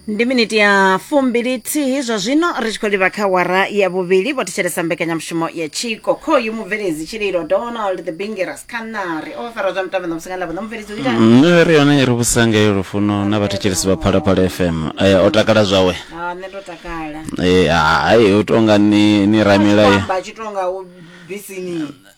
ndi miniti ya fumbilithihi zwa zwino ri tshi khou livha kha wara ya vhuvhili vho thetshelesa mbekanyamushumo ya tshiko khoyu mubveledzi tshililo donald the bingeras khanari o fara zwa mitambo ṋamusi nga lavo ṋa mubveledzi u itani nṋe ri yone ri vhusanga yo lufuno na vhathetshelesi vha phalaphala fm Eh, o takala zwawe Ah, nṋe ndo takala Eh, hai u tonga ni ni ramela ye amba tshi tonga u bisini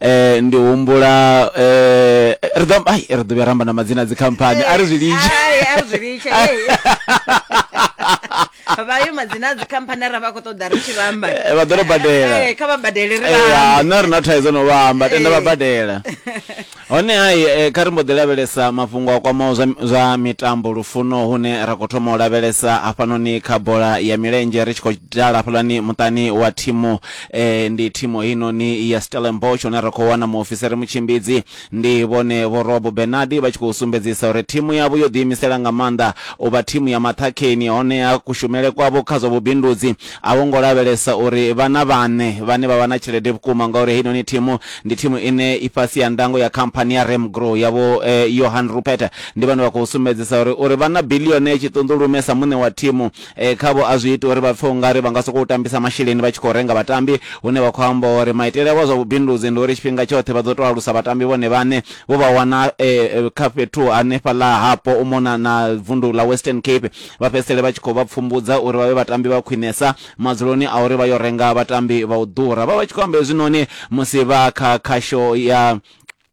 eh ndi humbula eh ri ḓo ai ri ḓo vhuya ramba na madzina a dzikhamphani a ri zwi litshe Ai, a ri zwi litshe ei. vha yo madzina a dzikhamphani ra vha khou ṱoḓa ri tshi vhamba Eh, vha ḓo ri badela. Eh, kha vha badele ri Eh, vhambe. ha, nṋe a ri na thaidzo no vha amba tenda vha Eh. badela hone hai eh, kha ri mbo ḓi lavhelesa mafhungo a kwamaho zwa, zwa mitambo lufuno hune ra khou thoma u lavhelesa hafhanoni kha bola ya milenzhe ri tshi khou dala hafhaḽani muṱani wa thimu eh, ndi thimu heinoni ya stellenbosch hune ra khou wana muofisiri mutshimbidzi ndi vhone vho rob benardi vha tshi khou sumbedzisa uri thimu yavho yo ḓiimisela nga maanḓa u vha thimu ya maṱhakheni honeha kushumele kwavho kha zwa vhubindudzi a vho ngo lavhelesa uri vhana vhane vhane vha vha na tshelede vhukuma ngauri heinoni thimu ndi thimu ine i fhasi ya ndango ya khamphani ya remgrow yavho eh, johan rupert ndi vhane vha khou sumbedzisa uri uri vha na bilione tshiṱunḓulume sa muṋe wa thimu Khavho a zwi iti uri vha pfe u nga ri vha nga sokou tambisa masheleni vha tshi khou renga vhatambi, hune vha khou amba uri maitele avho a zwa vhubindudzi ndi uri tshifhinga tshoṱhe vha ḓo tou alusa vhatambi vhone vhaṋe, vho vha wana kha fhethu hanefhaḽa hapo u mona na vundu ḽa Western Cape, vha fhedzisele vha tshi khou vha pfumbudza uri vha vhe vhatambi vha khwinesa madzuloni a uri vha yo renga vhatambi vha u ḓura. Vha vha tshi khou amba hezwinoni musi vha kha khasho ya.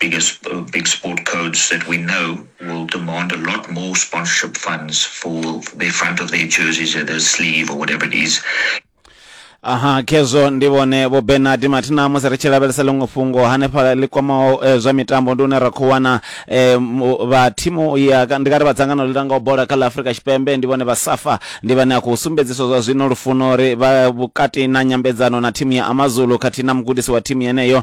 biggest big sport codes that we know will demand a lot more sponsorship funds for the front of their jerseys or their sleeve or whatever it is. aha khezwo ndi vhone vho benard mathina musi ri tshi lavhelesa ḽiṅwe fhungo hanefha ḽi kwamaho eh, zwa mitambo ndi une ra khou wana eh, mu- vha thimu ya ka- ndi kari vha dzangano ḽi langaho bola kha ḽa afurika tshipembe ndi vhone vha safa ndi vhane a khou sumbedziswa zwa zwino lufuno uri vha vhukati na nyambedzano na thimu ya amazulu khathihi na mugudisi wa thimu yeneyo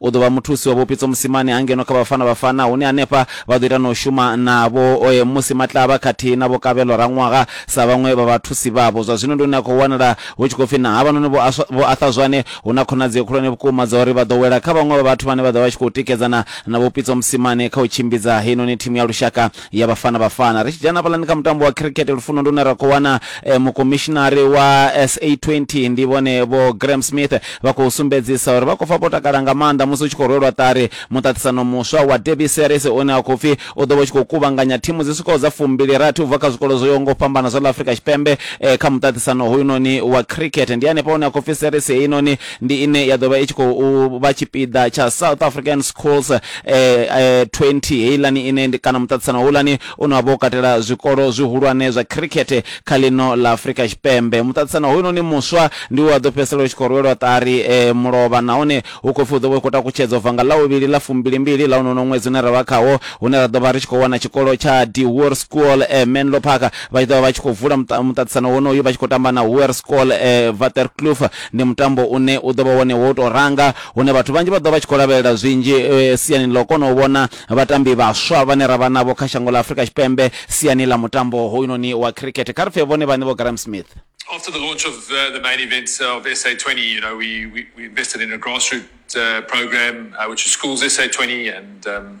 U ḓo vha muthusi wa Vho Pitso Mosimane ha ngeno kha Bafana Bafana hune hanefha vha ḓo ita na u shuma na Vho Musi Matlaba khathihi na Vho Kabelo Raṅwaha sa vhaṅwe vha vhathusi vhavho. Zwa zwino ndi hune ha khou wanala hu tshi khou pfi na havhanoni Vho Arthur Zwane hu na khonadzeo khulwane vhukuma dza uri vha ḓo wela kha vhaṅwe vha vhathu vhane vha ḓo vha vha tshi khou tikedzana na Vho Pitso Mosimane kha u tshimbidza heinoni thimu ya lushaka ya vhafana vhafana ri tshi dzhena hafhaḽani kha mutambo wa cricket lufuno ndi une ra khou wana eh, mukomishinari wa sa20 ndi vhone vho graham smith vha khou sumbedzisa uri vha khou pfa vho takala nga maanḓa musi u tshi khou rwelwa ṱari muṱaṱisano muswa wa derby series une a khou pfi u ḓo vha u tshi khou kuvhanganya thimu dzi swikaho dza fumbili rathi u bva kha zwikolo zwo yaho nga u fhambana zwa ḽa afrika tshipembe eh, kha muṱaṱisano hoyunoni wa cricket ndi hanefha hune a khou pfi series heinoni ndi ine ya ḓo vha i tshi khou vha tshipiḓa tsha south african schools eh, eh, 20 heilani ine ndi kana muṱaṱisano houlani une wa vha u katela zwikolo zwihulwane zwa khirikhethe kha ḽino ḽa afurika tshipembe muṱaṱisano hoyunoni muswa ndi wa ḓo fhedzisela u tshi khou rwelwa ṱari eh, mulovha nahone hu khou pfi u ḓo vha u khou takutshedzwa bva nga ḽauvhili ḽa fumbilimbili ḽa unono ṅwedzi une ra vha khawo hune ra ḓo vha ri tshi khou wana tshikolo tsha dewar school eh, menlo park vha tshi ḓo vha vha tshi khou vula muṱa- muṱaṱisano wonoyu vha tshi khou tamba na huer school eh, vaterkloof Ndi mutambo une u ḓo vha wone wo u tou ranga, hune vhathu vhanzhi vha ḓo vha vha tshi khou lavhelela zwinzhi siani ḽa u kona u vhona vhatambi vhaswa vhane ra vha navho kha shango ḽa Afrika Tshipembe siani ḽa mutambo hoyunoni wa khirikhethe. Kha ri pfe vhone vhaṋe Vho Graeme Smith. After the launch of the the main event of SA 20, you know, we we we invested in a grassroots uh, program uh, which is Schools SA 20 and um,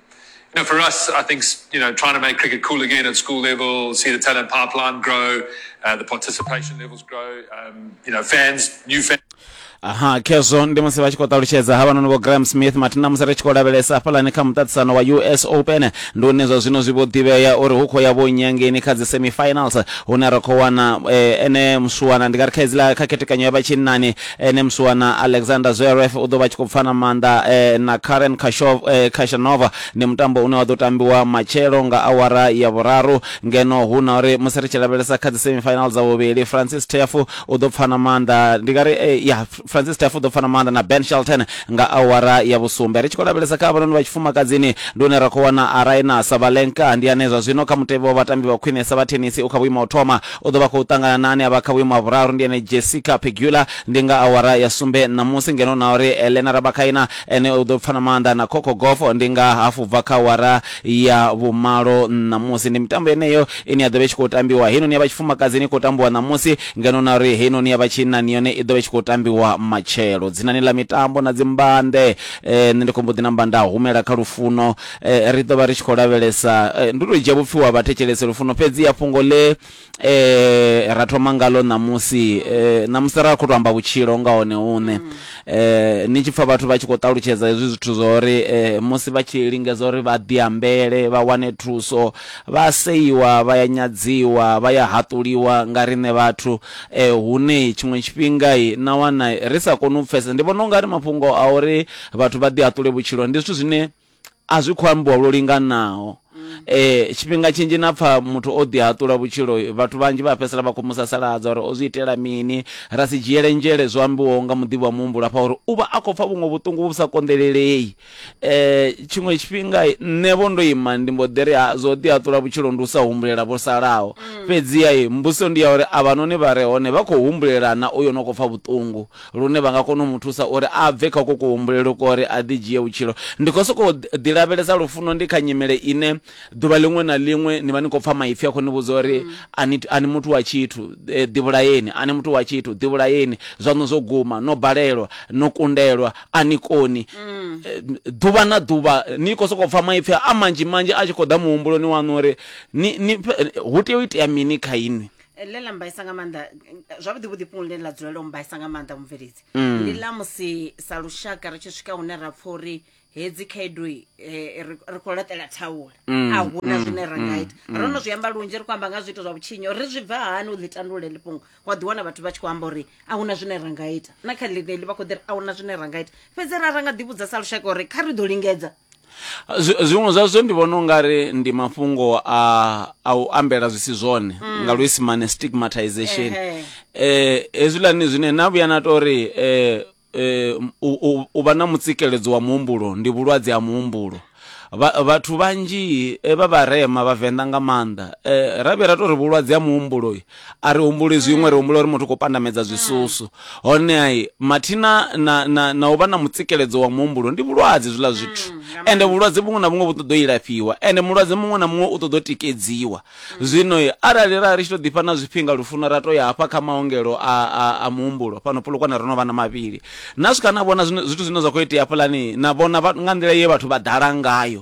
You know, for us, I think you know, trying to make cricket cool again at school level, see the talent pipeline grow, uh, the participation levels grow, um, you know, fans, new fans. aha khezwo ndi musi vha tshi khou ṱalutshedza ha vhanoni vho graham smith mathina musi ri tshi khou lavhelesa hafhalani kha muṱaṱisano wa us open ndi une zwa zwino zwi vho ḓivhea uri hu khou ya vho nyangeni kha dzi semifinals hune ra khou wana eh, ene muswana ndi nga ri kha idzila kha khethekanyo ya vhatshinnani Ene musiwana Alexander Zverev u ḓo vha a tshi khou pfa na maanḓa na Karen Khashov, Khachanova. Ndi mutambo une wa ḓo tambiwa matshelo nga awara ya vhuraru ngeno hu na uri musi ri tshi lavhelesa kha dzi semi final dza vhuvhili Francis Tiafoe u ḓo pfa na maanḓa ndi nga ri ya Francis Tiafoe u ḓo pfa na maanḓa na Ben Shelton nga awara ya vhusumbe. Ri tshi khou lavhelesa kha havhanoni vha tshifumakadzini ndi hune ra khou wana Aryna Sabalenka ndi ane zwa zwino kha mutevhe wa vhatambi vha khwinesa vha thenisi u kha vhuimo ha u thoma. U ḓo vha khou ṱangana na ane a vha kha vhuimo ha vhuraru, ndi ene Jessica Pegula, ndi nga awara ya sumbe ṋamusi, ngeno na uri Elena Rabakaina ene u ḓo pfana maanḓa na Coco Gauff ndi nga hafu bva kha awara ya vhumalo ṋamusi. Ndi mitambo yeneyo ine ya ḓo vha i tshi khou tambiwa. Heinoni ya vha tshifumakadzini i khou tambiwa ṋamusi, ngeno na uri heinoni ya vha tshinnani yone i ḓo vha i tshi khou tambiwa matshelo. Dzinani ḽa mitambo na dzimbande, nṋe ndi khou mbo ḓi namba nda humela kha lufuno. ri ḓo vha ri tshi khou lavhelesa ndi u tou dzhia vhupfhiwa ha vhathetshelese lufuno fhedzi ya fhungo ḽe ra thoma ngalo ṋamusi ṋamusi ra khou tou amba vhutshilo nga hone hune ni tshi pfha vhathu vha tshi khou ṱalutshedza hezwi zwithu zwa uri musi vha tshi lingedza uri vha ḓiambele vha wane thuso vha seiwa vha ya nyadziwa vha ya haṱuliwa nga riṋe vhathu hune tshiṅwe tshifhinga na wana ri sa koni u pfhesesa ndi vhona u nga ri mafhungo a uri vhathu vha ḓi haṱule vhutshilo ndi zwithu zwine a zwi khou ambiwa lwo linganaho. Tshifhinga tshinzhi na pfa muthu o ḓihaṱula vhutshilo vhathu vhanzhi vha fhedzisela vha khou mu sasaladza uri o zwi itela mini, ra si dzhiele nzhele zwo ambiwaho nga muḓivhi wa muhumbulo hafha uri u vha a khou pfa vhuṅwe vhuṱungu vhu sa konḓelelei. Tshiṅwe tshifhinga nṋe vho ndo ima ndi mbo ḓi ri ha zwa u ḓihaṱula vhutshilo ndi u sa humbulela vho salaho, fhedziha mbudziso ndi ya uri avhanoni vha re hone vha khou humbulela na uyo no khou pfa vhuṱungu? lune vha nga kona u mu thusa uri a bve kha uko kuhumbulele kwa uri a ḓidzhie vhutshilo. Ndi khou sokou ḓilavhelesa lufuno ndi kha nyimele ine ḓuvha ḽiṅwe na ḽiṅwe ni vha ni khou pfa maipfi a khou ni vhudza uri a ni, a ni muthu wa tshithu, ḓivhulaeni, a ni muthu wa tshithu, ḓivhulaeni, zwaṋu zwo guma, no balelwa, no kundelwa, a ni koni. Ḓuvha na ḓuvha ni khou sokou pfa maipfi a manzhi manzhi a tshi khou ḓa muhumbuloni waṋu uri ni, ni, hu tea u itea mini kha inwi. Eh, ḽe ḽa mbaisa nga maanḓa eh, zwavhuḓi vhuḓi fhungo ḽine ḽa dzulela u mbaisa nga maanḓa mubveledzi mm. ndi ḽa musi sa lushaka ri tshi swika hune ra pfha uri hedzi khaedu eh, ri khou laṱela thaula mm, a huna mm, zwine ra nga ita ro no zwi amba lunzhi ri khou amba nga zwiito zwa vhutshinyo ri zwi bva hani u ḽi tandulula ḽi fhungo wa ḓiwana vhathu vha tshi khou amba uri a huna zwine ra nga ita na kha ḽineḽi vha khou ḓiri a huna zwine ra nga ita fhedzi ra ra nga ḓivhudza sa lushaka uri kha ri ḓo lingedza Zwiṅwe zwa zwo ndi vhona ungari ndi mafhungo a a u ambela zwi si zwone nga luisimane stigmatization eh hezwiḽani zwine na vhuya na tori eh eh u u- u vha na mutsikeledzo wa muhumbulo ndi vhulwadze ha muhumbulo Vha- vhathu vhanzhi eh, vha vharema vhavenḓa nga maanḓa eh ra vhuya ra tori vhulwadze ha muhumbulo. a ri humbuli zwiṅwe ri humbula uri muthu khou pandamedza zwisusu honeha mathina na, na, na u vha na mutsikeledzo wa muhumbulo ndi vhulwadze zwiḽa zwithu ende vhulwadze vhuṅwe na vhuṅwe vhu ṱoḓo ilafhiwa ende mulwadze muṅwe na muṅwe u ṱoḓo tikedziwa zwino arali ra ri tshi to ḓifha na zwifhinga lufuno ra to ya hafha kha maongelo a, a, a muhumbulo fhano pulukwane ro no vha na mavhili na swika na vhona zwithu zwine zwa khou itea hafhaḽani na vhona nga nḓila ye vhathu vha ḓala ngayo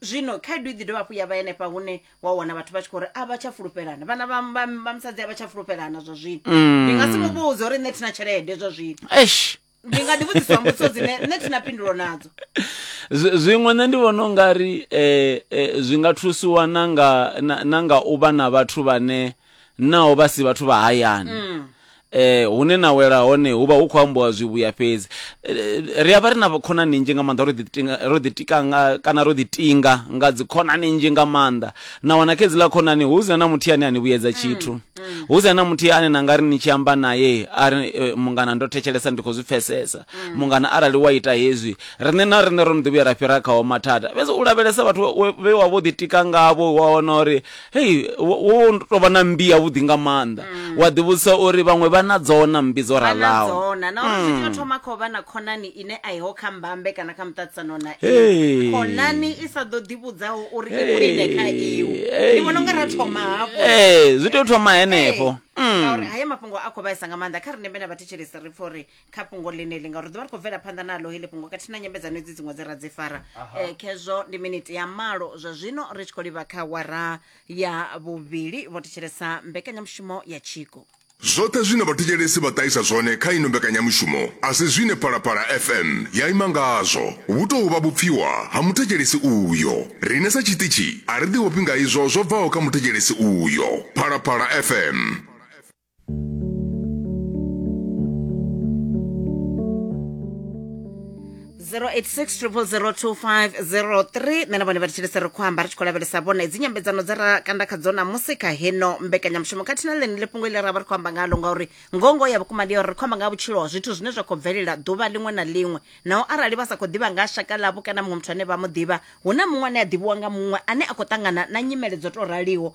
zwino khaedu i ḓi dovha hafhu ya vha henefha hune wa wana vhathu vha tshi khou ri a vha tsha fulufhelana vhana vha- vha- vha musadzi a vha tsha fulufhelana zwa zwino Mm. ndi nga si mu vhudze uri nṋe thina tshelede zwa zwino eish ndi nga ḓi vhudziswa mbudziso dzine nṋe thina phindulo nadzo Zwi- zwiṅwe nṋe ndi vhona ungari eh, eh, zwi nga thusiwa na nga na, na nga u vha na vhathu vhane naho vha si vhathu vha hayani mm. eh hune na wela hone hu vha hu khou ambiwa zwivhuya fhedzi eh, ri a vha ri na khonani nzhi nga maanḓa ro ḓitinga ro ḓitika nga kana ro ḓitinga nga dzi khonani nzhi nga maanḓa na wana kha dzi ḽa khonani hu zina na muthu ane a ni vhuyedza mm, tshithu mm. hu zina na muthu ane na nga ri ni tshi amba naye a ri eh, mungana ndo thetshelesa ndi khou zwi pfesesa mm. mungana arali wa ita hezwi riṋe na riṋe ro no ḓi vhuya ra fhira khaho mathada fhedzi u lavhelesa vhathu vhe wa vho ḓitika ngavho wa wana uri Hei, wo wo tou vha na mmbi yavhuḓi nga maanḓa wa ḓivhudzisa uri vhaṅwe vha na dzo na mmbi dzo vha na ralaho dzona na uri zwi tea u thoma kha u vha na khonani ine a iho kha mbambe kana kha muṱaṱisano na Hey. iwe khonani i sa ḓo ḓivhudzaho uri i khwine kha iwe Hey. ndi vhona unga ra thoma hafho Ee, zwi tea u thoma henefho Ee, ngauri haya mafhungo a khou vhaisa nga maanḓa kha riṋe vhena vhathetshelesi ri pfa uri kha fhungo ḽeneḽi ngauri ḓuvha ri khou bvela phanḓa naḽo heḽi fhungo khathihi na nyambedzano edzi dziṅwe dze ra dzi fara um khezwo ndi miniti ya malo zwa zwino ri tshi khou livha kha wara ya vhuvhili vho thetshelesa mbekanyamushumo ya tshiko Zwoṱhe zwine vhathetshelesi vha ṱahisa zwone kha ino mbekanyamushumo a si zwine Phalaphala FM ya ima ngazwo. Vhu tou vha vhupfiwa ha muthetshelesi uyo. Riṋe sa tshiṱitshi a ri ḓivhofhi nga izwo zwo bvaho kha muthetshelesi uyo. Phalaphala FM. 0860002503 nṋe na vhone vha thetshelese ri khou amba ri tshi khou lavhelesa vhone dzi nyambedzano dza ra kanda kha dzona musi kha heno mbekanyamushumo khathihi na ḽenele fhungo ile ra vha ri khou amba ngalo ngauri ngongo ya vhukuma ndi ya uri ri khou amba nga ha vhutshilo ha zwithu zwine zwa khou bvelela ḓuvha ḽiṅwe na ḽiṅwe naho arali vha sa khou ḓivha nga ha shaka ḽavho kana muṅwe muthu ane vha mu ḓivha hu na muṅwe ane a ḓivhiwa nga muṅwe ane a khou ṱangana na nyimele dzo tou raliho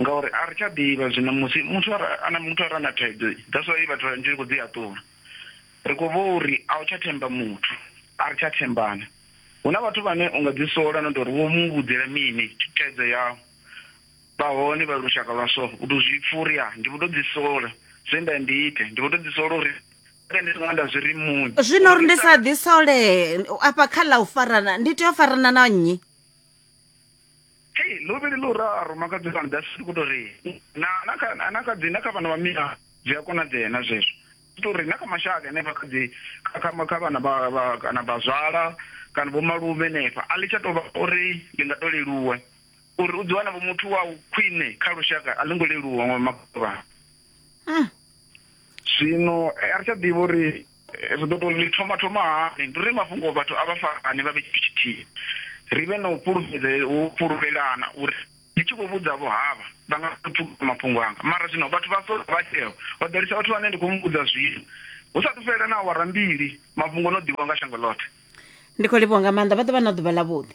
ngauri a ri tsha ḓivha zwino musi muthu ana muthu a re na thaidzo that's why vhathu vhanzhi ri khou dzi haṱula ri khou vha uri a u tsha themba muthu a ri tsha thembana hu na vhathu vhane u nga dzi sola no tori wo mu vhudzela mini thaidzo yau vha hone vha lushaka lwa so u to zwi pfha uri ya ndi vho to dzi sola zwe nda ndi ite ndi vho to dzi sola uri ndi songo nda zwi ri muni zwino uri ndi sa ḓi sole afha kha ḽa u farana ndi tea u farana na nnyi hei luvhili lu ra a ruma kha dzivhana dza sisi ku to ri na na kha na kha dzi na kha vhana vha mina zwi a konadzea na zwezwo to ri na kha mashaka ene kha dzi kha kha vhana vha kana vha zwala kana vho malume nefa a ḽi tsha to vha uri ndi nga to leluwe uri u ḓi wana vho muthu wa khwine kha lushaka a ḽi ngo leluwa nga makhuvha ah. zwino eh, a ri tsha ḓivha uri ri ḓo tou ḽi thoma thoma hani ndi uri mafhungo vhathu a vha farane vha vhe tshithu tshithihi ri vhe na u fhulufhedze u fhulufhelana uri ndi tshi khou vhudza vho havha vha nga pfukisa mafhungo anga mara zwino vhathu vha sola vha tsheo vha ḓalisa vhathu vhane ndi khou mu vhudza zwino hu sa thu fhelela na awara mbili mafhungo no ḓivhiwa nga shango ḽoṱhe ndi khou livhuwa nga maanḓa vha ḓo vha na ḓuvha ḽa vhuḓi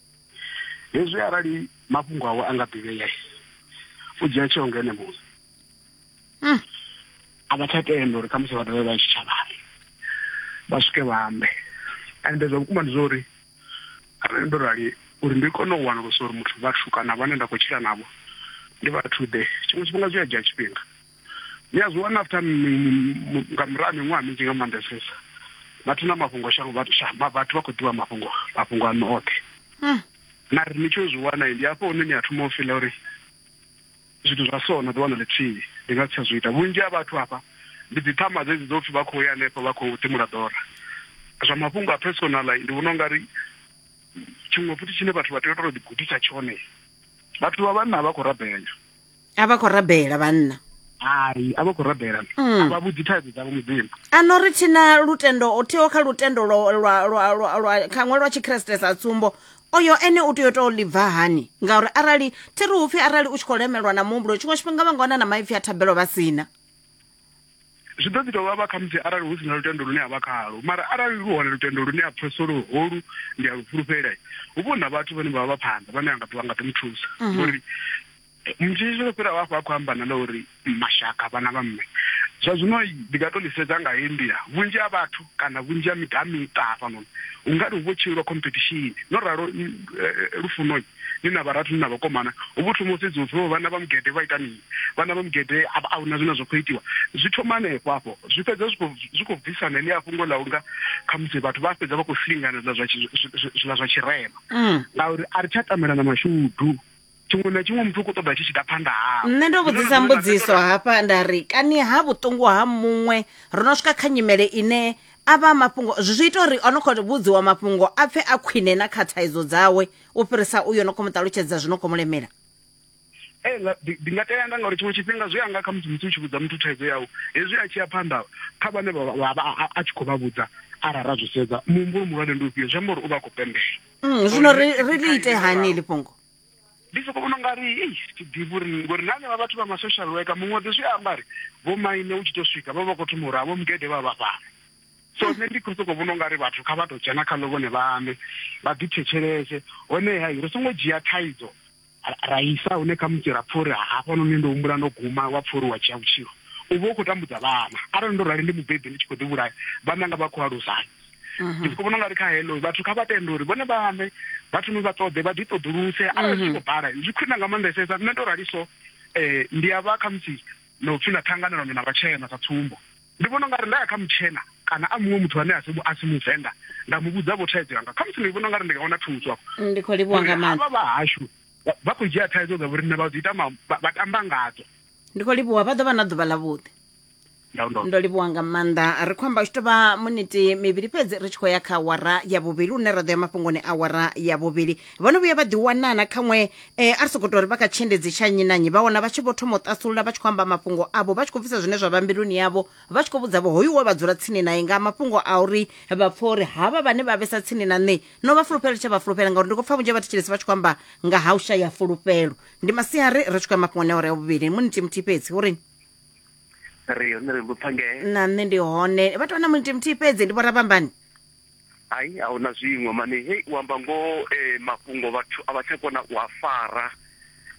hezwi arali mafhungo awe a nga ḓivhea u dzhia tsheo nga ene muṋe hmm. a vha tsha tenda uri khamusi vha dovhe vha tshitshavhani vha swike vha ambe ende zwa vhukuma ndi zwa uri arali ndo rali uri ndi kone u wanulusa uri muthu vhathu kana vhane nda khou tshila navho ndi vhathu ḓe tshiṅwe tshifhinga zwi a dzhia tshifhinga ni a zwi wana after nga murahu ha miṅwaha minzhi nga maanḓesesa vhathu na mafhungo shango vhathu vhathu vha khou ḓivha mafhungo mafhungo ano oṱhe hmm. na ri ni tshi zwi wana ndi hafho hune ni a thoma u fila uri zwithu zwa so na ḓi wana ḽithihi ndi nga si tsha zwi ita vhunzhi ha vhathu hafha ndi dzi ṱhama dzedzi dzo pfi vha khou ya hanefho vha khou timula ḓora zwa mafhungo a personal ndi vhona u nga ri tshiṅwe futhi tshine vhathu vha tea u tou ḓigudisa tshone vhathu vha vhanna vha khou rabela a vha khou rabela vhanna hai a vha khou rabela mm. a vha vhudzi thaidzo dzavho mudzimu a no ri thi na lutendo o thiho kha lutendo khaṅwe lwa tshikreste sa tsumbo oyo ene u tea u tou ḽi bva hani ngauri arali thi ri upfhi arali u tshi khou lemelwa na muhumbulo tshiṅwe tshifhinga vha nga wana na maipfhi a thabelo vha sina zwi ḓo ḓi tou vhavha khamusi arali hu si na lutendo lune a vha khalo mara arali lu hone lutendo lune a pfesesa uri holu ndi a lu fhulufhela hu vho na vhathu vhane vha vha vha phanḓa vhane a nga ḓo nga ḓo mu thusa mhm. ngori mutshitshi tsho fhira vhafho a khou amba na ḽa uri mashaka vhana vha mme zwa zwino ndi nga to ḽi sedza nga heyi nḓila vhunzhi ha vhathu Kana vhunzhi ha miṱa ha miṱa hafhanoni hu nga ri hu vho tshinyelwa khompethishini. No ralo lufuno ni na vharathu ni na vhakomana hu vho thoma u sedziwa upfi vho vhana vha mugede vha ita mini, vhana vha mugede a a huna zwine zwa khou itiwa. Zwi thoma hanefho hafho zwi fhedza zwi khou zwi khou bvisa na heḽia fhungo ḽa unga khamusi vhathu vha fhedza vha khou silingana zwiḽa zwa zwiḽa zwa tshirema ngauri a ri tsha tamela na mashudu. tshiṅwe na tshiṅwe muthu u khou ṱoḓa tshi tshi ḓa phanḓa hawe nṋe ndo vhudzisa mbudziso hafha nda ri kani ha vhuṱungu ha muṅwe ro no swika kha nyimele ine a vha mafhungo zwi ita uri o no khou vhudziwa mafhungo a pfe a khwine na kha thaidzo dzawe u fhirisa uyo no khou mu ṱalutshedza zwi no khou mu lemela ee ndi nga tea anda ngauri tshiṅwe tshifhinga zwi anga kha musi musi u tshi vhudza muthu thaidzo yau hezwi a tshi ya phanḓa kha vhane vha a tshi khou vha vhudza arali ra zwi sedza muhumbulo muhulwane ndi ufhio zwi amba uri u vha a khou pembela mm, zwino ri ḽi ite hani ḽi fhungo ndi soko vhona nga ri ei thi ḓivhi uri ngori na henevha vhathu vha ma-social worker muṅwe ḓi zwi amba ri vho maine u tshi to swika vha vha khou thoma uri havho mugede vha vha fhano so nṋe ndi khou sokou vhona u nga ri vhathu kha vha tou dzhena khaḽo vhone vhaṋe vha ḓi thetshelese honeha ri songo dzhia thaidzo ra isa hune kha musi ra pfha uri hafhanoni ndo humbula ndo guma wa pfha uri wa dzhia vhutshilo u vha u khou tambudza vhana arali ndo rali ndi mubebi ndi tshi khou ḓi vhulaya vhananga vha khou alusani mhm. ndi soko vhona nga ri kha hello vhathu kha vha tende uri vhone vhaṋe vha thome vha ṱoḓe vha ḓi ṱoḓuluse arali zwi mhm. khou bala zwi khwina nga maanḓesesa nṋe ndo rali so um eh, ndi a vha khamusi na u pfi na ṱhanganelano na vhatshena sa tsumbo ndi vhona ungari nda ya kha mutshena kana a muṅwe muthu ane a si muvenḓa nda mu vhudza vho thaidzo yanga khamusi ndi vhona ungari ndi nga wana thuso afho mm, ndi khou livhuwa nga maanḓa vha hashu vha khou dzhia thaidzo dza vhoriṋe vha dzi ita vha tamba ngadzo ndi khou livhuwa vha ḓo vha na ḓuvha ḽavhuḓi ndaundo ndo livhuwa nga maanḓa ri khou amba u tshi tovha muniti mivhili fhedzi ri tshi khou ya kha awara ya vhuvhili une ra ḓo ya mafhungoni awara ya vhuvhili vho no vhuya vha ḓiwanana khaṅwe um a ri sokou tou ri vha kha tshiendedzi tsha nnyi na nnyi vha wana vha tshi vho thoma u ṱasulula vha tshi khou amba mafhungo avho vha tshi khou bvisa zwine zwa vha mbiluni yavho vha tshi khou vhudza vho hoyu we vha dzula tsini naye nga mafhungo a uri vha pfha uri havha vhane vha vhesa tsini na nṋe no vha fulufhela tsha vha fulufhela ngauri ndi khou pfha vhunzhi ha vhathetshelesi vha tshi khou amba nga ha u shaya fulufhelo ndi masiari ri tshi khou ya mafhungoni a awara ya vhuvhili muniti muthihi fhedzi uri ri hone ri lupfa ngee na nṋe ndi hone vha tou na muniti muthihi fhedzi ndi vhorafhambani hai a hu na zwiṅwe mane hei u amba ngoho um mafhungo vhathu a vha tsha kona u a fara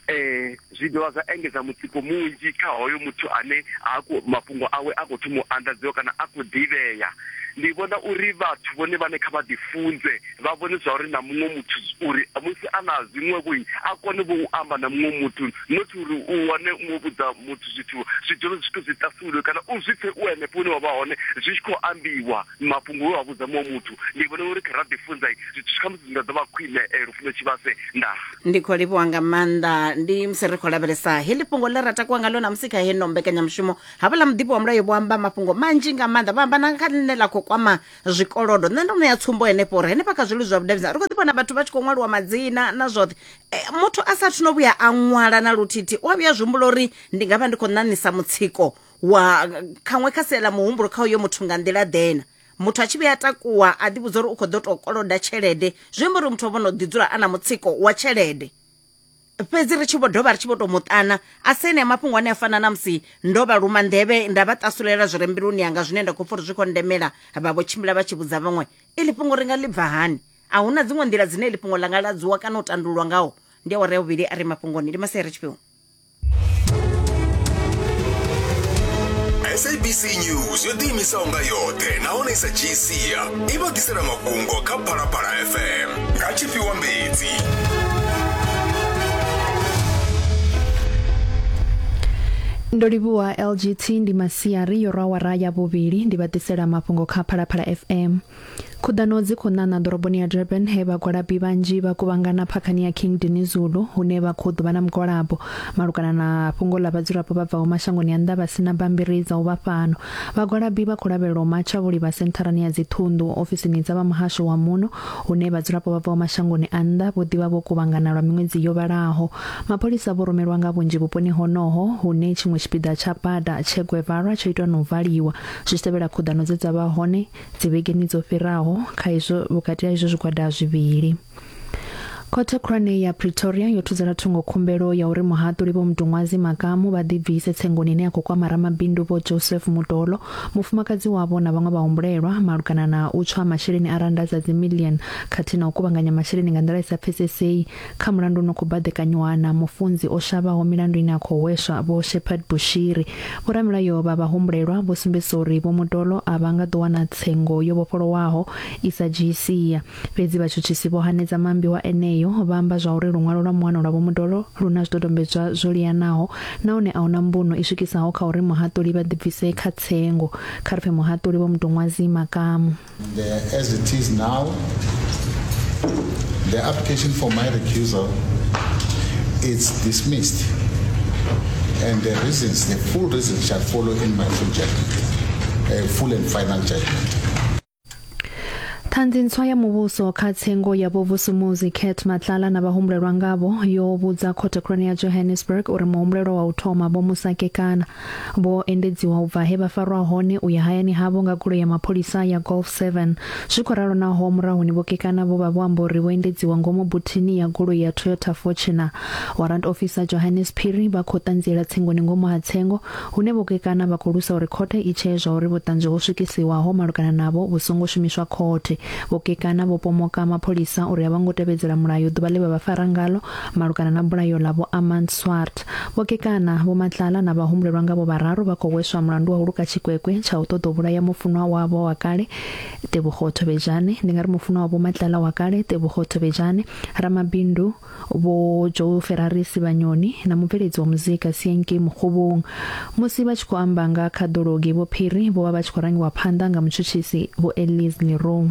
um zwi dovha zwa engedza mutsiko munzhi kha hoyo muthu ane a khou mafhungo awe a khou thoma u anḓadziwa kana a khou ḓivhea ndi vhona uri vhathu vhone vhane kha vha ḓifunze vha vhonisa uri na muṅwe muthu uri musi a na zwiṅwevho a kone vho u amba na muṅwe muthu not uri u wane u vhudza muthu zwithu zwi dzule zwithu zwi ṱasulwe kana u zwi pfe u henefho hune wa vha hone zwi tshi khou ambiwa mafhungo we wa vhudza muṅwe muthu ndi vhona uri kha ra ḓifunza zwithu kha musi zwi nga ḓo vha khwine eh, lufuno tshivhase nda ndi khou livhuwa nga maanḓa ndi musi ri khou lavhelesa heḽi fhungo ḽe ra takuwa ngalo na musi kha heno mbekanyamushumo havhaḽa muḓivhi wa mulayo vho amba mafhungo manzhi nga maanḓa vha amba na kha ḽine ḽa khou kwama zwikolodo nṋe ndo ṋea tsumbo henefho uri henefha kha zwilu zwa vhudavhidzana ri khou ḓi vhona vhathu vha tshi khou ṅwaliwa madzina na zwoṱhe e, muthu a sa thuno vhuya a ṅwala na luthithi u a vhuya zwihumbula uri ndi nga vha ndi khou ṋaṋisa mutsiko wa khaṅwe kha sia ḽa muhumbulo kha uyo muthu nga nḓila ḓena muthu a tshi vhuya takuwa a ḓivhudza uri u khou ḓo tou koloda tshelede zwi amba uri muthu o vhono ḓi dzula a na mutsiko wa tshelede fhedzi ri tshi vho dovha ri tshi vho tou muṱana a si enea mafhungo ane a fana na musi ndo vha luma nḓevhe nda vha tasulela zwi re mbiluni yanga zwine nda khou pfa uri zwi khou ndemela vha vho tshimbila vha tshi vhudza vhaṅwe iḽi fhungo ri nga ḽi bva hani a hu na dziṅwe nḓila dzine iḽi fhungo ḽa nga ladzuwa kana u tandululwa ngaho ndi awara ya vhuvhili a re mafhungoni ndi masere tshifhiwa sabc news yo ḓiimisaho nga yoṱhe nahone sa gcia i vha ḓisela mafhungo kha phalaphala fm nga tshifhiwa mbedzi ndo livhuwa lgt ndi masiari yo rwa wara ya vhuvhili ndi vha ḓisela mafhungo kha phalaphala fm Khuḓano dzi khou ṋaṋa ḓoroboni ya Durban he vhagwalabi vhanzhi vha kuvhangana phakhani ya King Dinuzulu hune vha khou ḓuvha na mugwalabo malugana na fhungo ḽa vhadzulapo vha bvaho mashangoni a nnḓa vha sina bammbiri dza u vha fhano. Vhagwalabi vha khou lavhelelwa u matsha vho livha sentharani ya dziṱhunḓu, ofisini dza vha muhasho wa muno hune vhadzulapo vha bvaho mashangoni a nnḓa vho ḓivha vho kuvhangana lwa miṅwedzi yo vhalaho. Mapholisa vho rumelwa nga vhunzhi vhuponi honoho hune tshiṅwe tshipiḓa tsha bada tshe Guevara tsho itwa na u valiwa zwi tshi tevhela khuḓano dze dza vha hone dzivhegeni dzo fhiraho kha izwo vhukati ha izwo zwigwada zwivhili khothe khulwane ya pretoria yo thudzela thungo khumbelo ya uri muhaṱuli vho mudungwazi makamu vha ḓibvise tsengoni ine ya khou kwama ramabindu vho joseph mudolo mufumakadzi wavho na vhaṅwe vhahumbulelwa malugana na u tswa masheleni a randa dza dzimillion khathihi na u kuvhanganya masheleni nga nḓila i sa pfesesei Kha mulandu u no khou baḓekanyiwa na mufunzi o shavhaho milandu ine ya khou hweswa Vho Shepherd Bushiri, vhoramilayo vha vhahumbulelwa vho sumbedzisa uri Vho Mutolo a vha nga ḓo wana tsengo yo vhofholowaho i sa dzhii sia. Fhedzi vhatshutshisi vho hanedza maambiwa eneo, vha amba zwa uri luṅwalo lwa muano lwa Vho Mutolo lu na zwidodombedzwa zwo liyanaho nahone a hu na mbuno i swikisaho kha uri muhaṱuli vha ḓibvise kha tsengo. Kha ri pfe muhaṱuli Vho Muduṅwazi makamu. As it is now, the application for my recusal is dismissed and the reasons, the full reasons shall follow in my full judgment, a full and final judgment. ṱhanzi ntswa ya muvhuso kha tsengo ya vhovusumuzi cat matlala na vhahumbulelwa ngavho yo vhudza khothe khulwane ya johannesburg uri muhumbulelwa wa u thoma vho musakekana Vho endedziwa u bva he vha farwa hone u ya hayani havho nga goloi ya mapholisa ya Golf 7. Zwi khou ralo naho murahuni vho kekana vho vha vho amba uri vho endedziwa ngomu buthini ya goloi ya Toyota Fortuner. Warrant Officer Johannes Phiri vha khou ṱanziela tsengoni ngomu ha tsengo hune vho kekana vha khou lusa uri khothe i tshee zwauri vhuṱanzi ho swikisiwaho malugana navho vhu songo shumiswa khothe. Vho kekana vho pomoka mapholisa uri a vho ngo tevhedzela mulayo ḓuvha ḽe vha vha fara ngalo malugana na bulayo ḽa Vho Armand Swart. Vho Kekana, Vho Matlala na vhahumbulelwa ngavho vhararu vha khou hweswa mulandu wa u luka tshikwekwe tsha u ṱoḓa u vhulaya mufunwa wavho wa kale, Tebogo Thobejane. Ndi nga ri mufunwa wa Vho Matlala wa kale, Tebogo Thobejane, ramabindu Vho Joe Ferrarisi Vhanyoni na mubveledzi wa muzika Sienkei Mokgobong. Musi vha tshi khou amba nga khaḓulo ngei Vho Phiri, vho vha vha tshi khou rangiwa phanḓa nga mutshutshisi Vho Elise Leroux.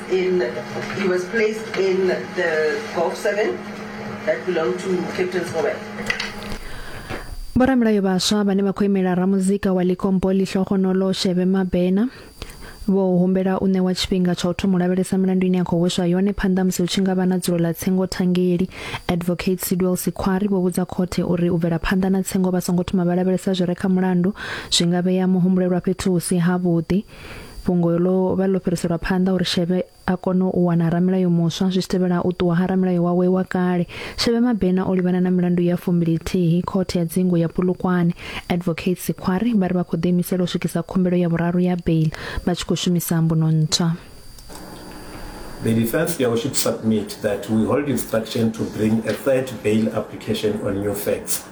Vhoramilayo vhaswa vhane vha khou imela ramuzika wa Licompo Lihlohonolo Shebe Mabena vho humbela u ṋewa tshifhinga tsha u thoma u lavhelesa milandu ine ya khou hweswa yone phanḓa musi hu tshi nga vha na dzulo ḽa tsengo thangeli. Advocate Sidwell Sikhwari vho vhudza khothe uri u bvela phanḓa na tsengo vha songo thoma vha lavhelesa zwi re kha mulandu zwi nga vhea muhumbulelwa fhethu hu si havhuḓi. fhungo ḽo vha ḽo fhiriselwa phanḓa uri Shebe a kone u wana ramilayo muswa zwi tevhela u ṱuwa ha ramilayo wawe wa kale Shebe Mabena o livhana na milandu ya fumbilithihi khothe ya dzingu ya Pulukwane advocate Sikhwari vha ri vha khou ḓiimisela u swikisa khumbelo ya vhuraru ya bail vha tshi khou shumisa mbuno ntswa The defense here should submit that we hold instruction to bring a third bail application on new facts.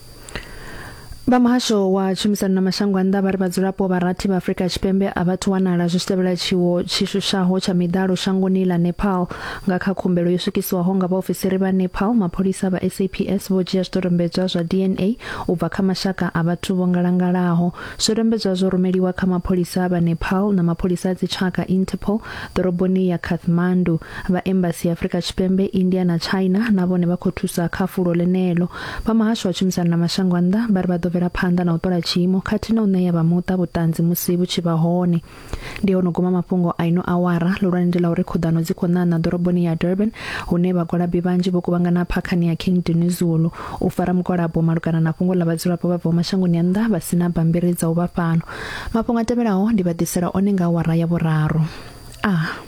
Vha muhasho wa tshumisano na mashango a nnḓa vha ri vhadzulapo vha rathi vha Afrika Tshipembe a vha thu wanala zwi tshi tevhela tshiwo tshi shushaho tsha miḓalo shangoni ḽa Nepal nga kha khumbelo yo swikiswaho nga vhaofisiri vha Nepal mapholisa vha SAPS vho dzhia zwidodombedzwa zwa DNA u bva kha mashaka a vhathu vho ngalangalaho zwidodombedzwa zwo rumeliwa kha mapholisa vha Nepal na mapholisa a dzitshaka Interpol ḓoroboni ya Kathmandu Vha Embasi ya Afrika Tshipembe, India na China na vhone vha khou thusa kha fulo ḽeneḽo. Vha Muhasho wa Tshumisano na Mashango a Nnḓa vha ri vha ḓo bvela phanḓa na u ṱola tshiimo khathihi na u ṋea vha muṱa vhuṱanzi musi vhu tshi vha hone. Ndi ho no guma mafhungo a ino awara. Ḽihulwane ndi ḽa uri khuḓano dzi khou ṋaṋa ḓoroboni ya Durban hune vhagwalabi vhanzhi vho kuvhangana phakhani ya King Dinuzulu u fara mugwalabo malugana na fhungo ḽa vhadzulapo vha bvaho mashangoni a nnḓa vha si na bammbiri dza u vha fhano. Mafhungo a tevhelaho ndi vha ḓisela one nga awara ya vhuraru. A.